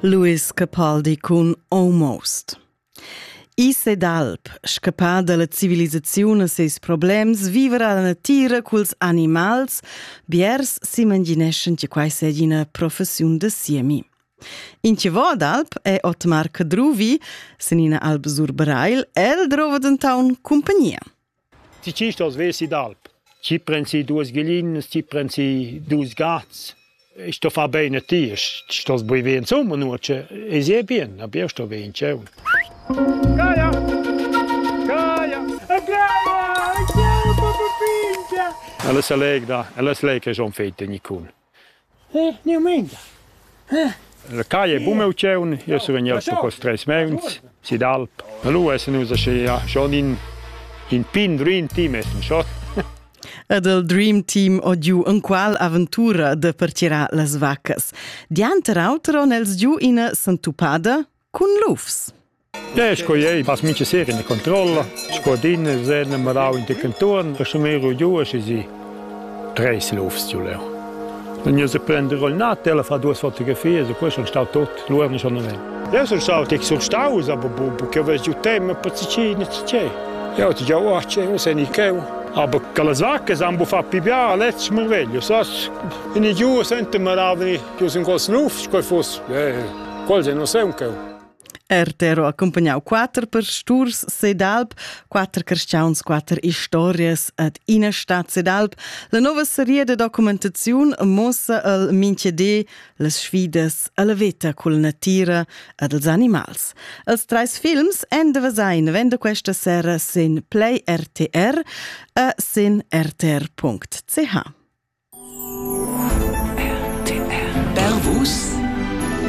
Louis Capaldi cun Almost. Is ed alp, scappà dalla civilisaziun a seis problems, vivra la natira culs animals, biers s'imagineschan che quai sia ina professiun da siemi. In che vo d'alp è Otmar Cadruvi, sin ina alp Sur Breil, el drova denton compagnia. Ti tschist oz vesi d'alp. Ti pren si duas glinas, ti pren si dus gats. I sto far bene a ti, ti stos bui ve insomma nuoce. E si è bien, a bia sto ve in cieu. Gaia! Gaia! Gaia! Il cieu, papà Pintia! Ella se legda, ella se lega schon fete, Nicole. La caia è buna ucchiun, jeu sun vegnius sco cos treis meuns si d'alp e lu essan nus aschi schon in, in pin dream team essan schon. Ed il Dream Team odiu en qual aventura de pertgirar las vaccas. Dianter auter on els giu ina sentupada cun lufs. E sco ei pass mincha sera ina controlla, sco din sen marau in canton, resumero giu e si treis lufs giu leu. Dann io se prende roll nat, ella fa duas fotografies e poi sono stau tot, lu erano sono ven. Io sono stato che sono stato, aber bu che vas giù te, ma pazzicina c'è. Io ti già oh, c'è, non sai ni che. Aber quelle sacche sanno far pipiare a letto merveglio, sas? In giù sente maravani, giù in quel snuf, coi fosse. Quel non sei un cheu. RTR ha accumpagnau quater pasturs sedalb, quater carstgauns, quater historias ad ina stad sedalb. La nova seria de documentaziun mossa el minchede las sfidas alla veta cul natira e dels animals. Els treis films en de Vasein vende questa sera sin Play RTR e sin rtr.ch. RTR. Bervus